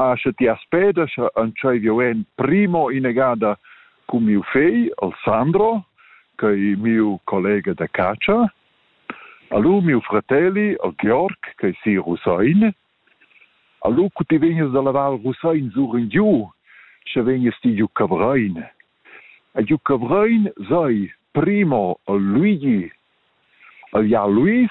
Ah, sche ti as peda, sche entschei jeu en primo inegada cun miu fegl, Alessandro, che è mio collega da catscha, allu miu fratelli, el Georg, che è si Rusain, allu cu ti vegnes da lavar Rusain sur in giu, sche vegnes ti giu Cavrein. E giu Cavrein sei primo el Luigi, el Jan Luis,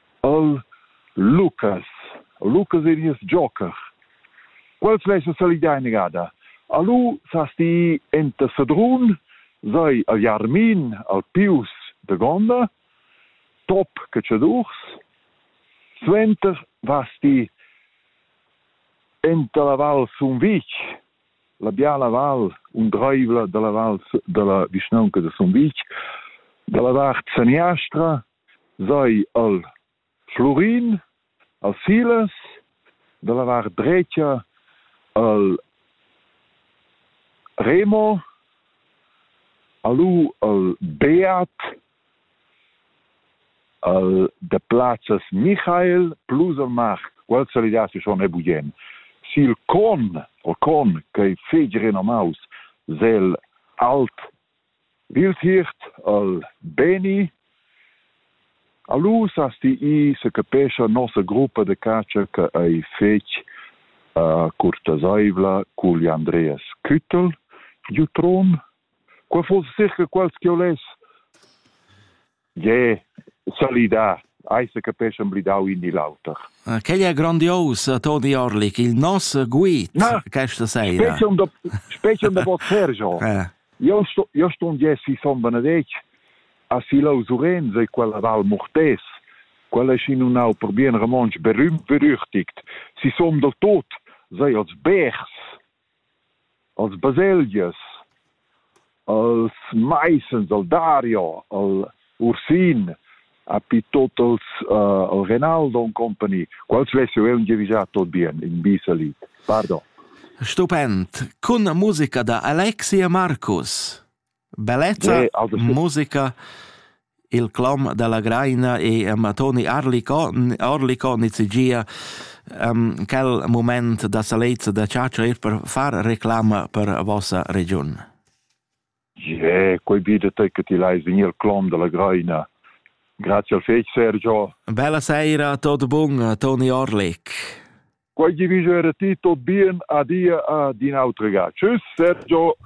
al Lucas. Lucas ei nies joker. Quels lessen salidar inegada. Alu sas ti enta Sedrun, sei al Jarmin, al Pius de Gonda, top cacciadurs, suenter vas ti enta la val Sumvitg, la biala val undreivla dalla val dalla vischnaunca de Sumvitg, dalla vart saniastra Sai al Flurin, a Silas, dalla vart dretscha al Remo, a lu al Beat, al Deplazes Michael plus al Mart. Quels salidassi schon e bugen. Sil con, o con, che fegi renomaus, zel alt Bildhirt al Beni. Alus as di i secapescha nossa gruppa da chatscha che ei fetg uh, curtaseivla cugl Andreas Küttel giu Tron. Qua fuss circa quals che ho less. Gie, solidar, ei secapeschan blidau in ni l'auter. Ah, quel è grandios, Toni Orlik, il nos guid Na, questa sera. Specie un do, specie un do vot Sergio. Eh. Io sto, io sto un Jesse Son Benedetg a Silou Surenze e quella Val Murtes, quella è in un au per bien romonsch berüm berüchtigt. Si som do tot, sei als Bers, als baselgias, als maisens, al Dario, al Ursin, a pi tot als, uh, al Renaldo und company, quals vesse eu giavisa tot bien in Bisalit. Pardon. Stupend. Con musica da Alexi e Marcus. Bellezza, musica, il clom della Graina e Matoni Arlicon, Arlicon nizigia um, quel moment da salezza da Ciaccio er per far reclama per vossa region. Yeah, quei vide te che ti l'hai venir clom della Graina. Grazie al fec Sergio. Bella sera, tot bun, Toni Orlik. Quei vi vivere ti tot bien, adia a din autrega. Tschüss Sergio.